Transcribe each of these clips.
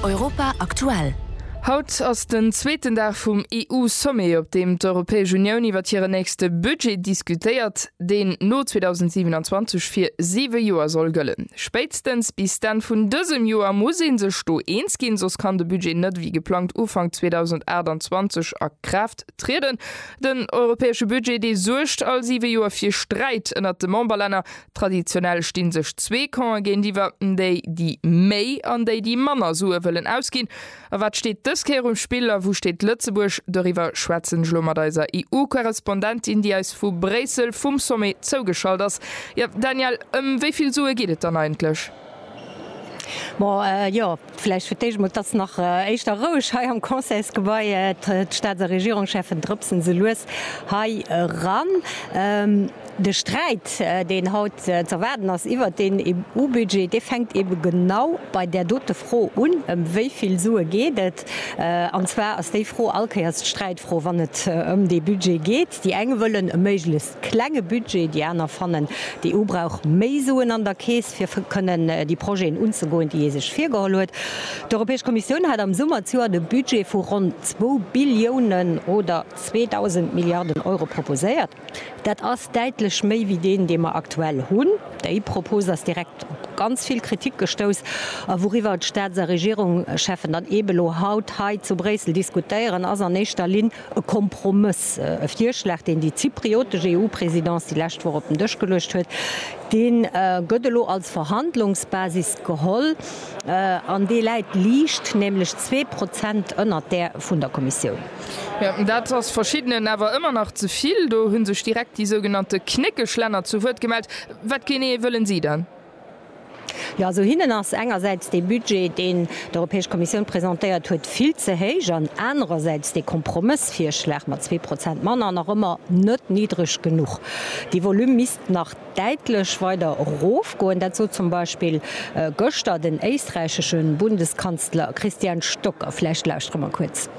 Europa aktuell. Haut ass den zweeten Dag vum EU-Sommet, op deem d'Europäesch Unioun iwwer hiren nächste Budget diskutéiert, deen no 2027 fir siwe Joer soll gëllen. Spéitstens bis d'Enn vun dësem Joer muss ee sech do eens ginn, soss kann de Budget net wéi geplangt Ufank 2028 a Kraaft trieden. Den europäesche Budget, dee suergt all siwe Joer fir Sträit ënnert de Memberlänner. Traditionell stinn sech zwee Campen géintiwwer, déi déi méi an déi déi manner Sue wëllen ausginn. A wat steet dës Kéier um Spill a wou steet Lëtzebuerg? Doriwwer schwätzen ech elo mat eiser EU-Korrespondentin, déi eis vu Bréissel vum Sommet zougeschalt ass. Jo Danielle, ëm wéi vill Sue geet et dann eigentlech? Bon, jo, vläicht fir d'éischt emol, et ass nach éischter roueg hei am Conseilsgebai. D'Staats a Regierungscheffen drëpsen esou lues hei eran. De Sträit, deen haut z'erwaarden ass iwwert deen EU-Budget, dee fänkt ebe genau bei där dote Fro un, Ëm wéi vill Sue geet et? An zwar ass déi Fro allkéiers d'Sträitfro, wann et ëm dee Budget geet. Déi eng wëllen e méiglechst Klenge Budget, déi aner fannen, d'EU brauch méi Suen an der Keess, fir kënnen déi Projeten unzegoen, déi ee sech virgeholl huet. D'Europäesch Kommissioun hat am Summer d'Joer de Budget vu ronn zwou Billiounen oder 2.000 Milliarden Euro proposéiert. Dat ass däitlech méi wéi deen, dee mer aktuell hunn. Déi Propos ass direkt op ganz vill Kritik gestouss. A wouriwwer d'Staats a Regierungscheffen dann eebe lo haut hei zu Bréissel diskutéieren, ass an éischter Linn, E Kompromëss, e Virschlag, deen déi zypriotesch EU-Présidence déi lescht Woch op den Dësch geluecht huet, dee gëtt elo als Verhandlungsbasis geholl an dee läit liicht, nämlech zwee Prozent ënnert där vun der Kommissioun. Dat ass Verschiddenen awer ëmmer nach ze vill. Do hu sech direkt déi sougenannte Knéckeschlänner zu Wuert gemellt. Wat genee wëllen si dann? Jo, esou hinnen ass engersäits dee Budget, deen d'Europäesch Kommissioun presentéiert huet, vill ze héich an anerersäits dee Kompromëssvirschlag mat zwee Prozent manner nach ëmmer net niddreg genuch. Dee Volume misst nach däitlech weider erofgoen. Dat sot zum Beispill gëschter den éisträichesche Bundeskanzler Christian Stocker. Vläicht lauschtere mer kuerz.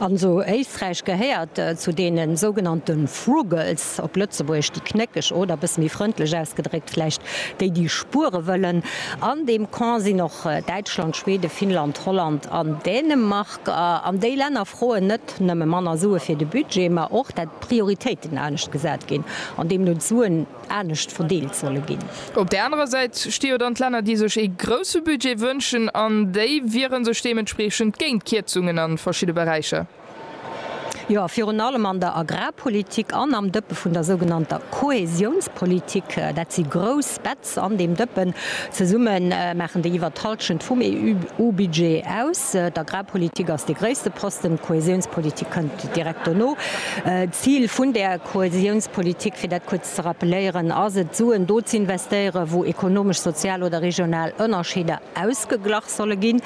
An esou Éisträich gehéiert zu deene sougenannte Frugals, op Lëtzebuergesch déi Knéckeg oder, bësse méi frëndlech ausgedréckt vläicht, déi déi spuere wëllen. An deem Camp sinn och Däitschland, Schweden, Finnland, Holland an Dänemark. An déi Länner froen net nëmme manner Sue fir de Budget, ma och dat d'Prioritéiten anescht gesat ginn an deemno d'Suen, anescht verdeelt solle ginn. Op där anerer Säit sti jo dann d'Länner, déi sech ee grousse Budget wënschen, an déi wiere sech deementspreechend géint Kierzungen a verschidde Beräicher. Jo, virun allem an der Agrarpolitik an am Dëppe vun der sougenannter Kohäsionspolitik. Dat si grouss Betz an deem Dëppen. Zesumme maachen déi iwwer d'Hallschent vum EU-Budget aus. D'Agrarpolitik ass dee gréisste Posten, d'Kohäsionspolitik kënnt direkt dono. D'Zil vun där. Kohäsiounspolitik, fir dat kuerz ze rappeléieren, ass et, Suen do z'investéieren, wou ekonomesch, sozial oder regional Ënnerscheeder ausgeglach solle ginn.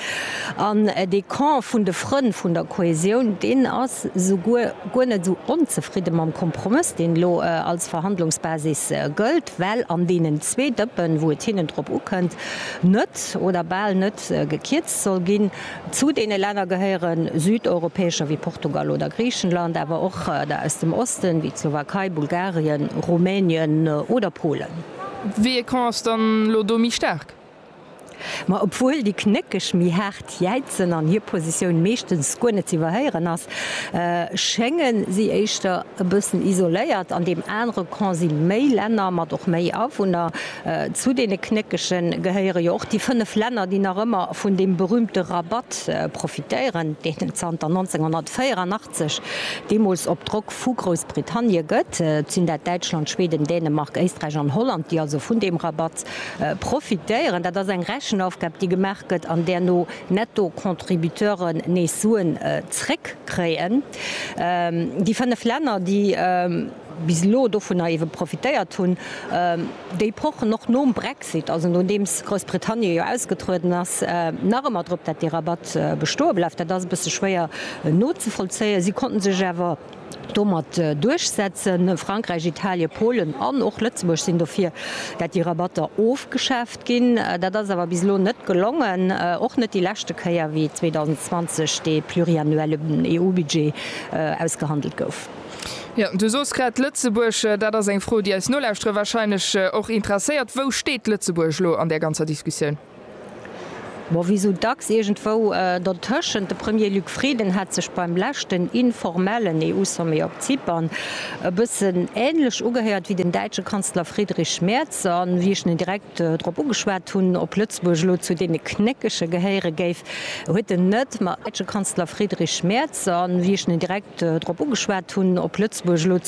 An dee Camp vun de Frënn vun der Kohäsioun, deen ass souguer guer net esou onzefridde mam Kompromëss, deen elo als Verhandlungsbasis gëllt, well an deenen zwee Dëppen, wou et hinnen drop ukënnt, net oder bal net gekierzt soll ginn. Zu deene Länner gehéiere südeuropäescher wéi Portugal oder Griichenland, awer och der aus dem Osten, wéi d'Slowakei, Bulgarien, Rumänien oder Polen. Wéi ee Camp ass dann elo do méi staark? Ma obwuel déi Knéckeg méi haart jäizen an hir Positioun meeschtens guer net ze iwwerhéieren ass, schénge si éischter e bëssen isoléiert. An deem anere Camp si méi Länner mat och méi Awunner, Zu deene Knéckege gehéiere jo och déi fënnef Länner, déi nach ëmmer vun deem berüümte Rabatt profitéieren, deen et zanter 1984, deemools op Drock vu Groussbritannie, gëtt. Et sinn dat Däitschland, Schweden, Dänemark, Éisträich an Holland, déi also vun deem Rabatt profitéieren. Dat ass eng Rechenaufgab, déi gemaach gëtt an däerno Netto-Contributeuren nees Suen zréckkréien. Déi fënnef Länner, déi. bis elo dovunner ewe profitéiert hunn, déi pochen och nom Brexit, also nodeems Groussbritannie jo ausgetrueden ass, nach ëmmer drop, datt dee Rabatt bestoe bleift. Dat ass e bësse schwéier nozevollzéien. Si konnten sech awer domat duerchsetzen. Frankräich, Italien, Polen an och Lëtzebuerg sinn dofir, datt déi Rabatter ofgeschaaft ginn. Dat ass awer bis elo net gelongen, och net déi leschte Kéier, wéi 2020 dee pluriannuelle EU-Budget ausgehandelt gouf. Jo, du sos grad Lëtzebuerg. Dat ass eng Fro, déi eis Nolauschterer wahrscheinlech och interesséiert. Wou steet Lëtzebuerg elo an där ganzer Diskussioun? Bon, wéi sou dacks iergendwou dertëschent. De Premier Luc Frieden hat sech beim leschten informellen EU-Sommet op Zypern e bëssen änlech ugehéiert wéi den däitsche Kanzler Friedrich Merz. An wéi ech en direkt. drop ugeschwat hunn, ob Lëtzebuerg elo zu deene Knéckege gehéiere géif, huet en net, ma däitsche Kanzler Friedrich Merz. An wéi ech en direkt drop ugeschwat hunn, ob Lëtzebuerg elo.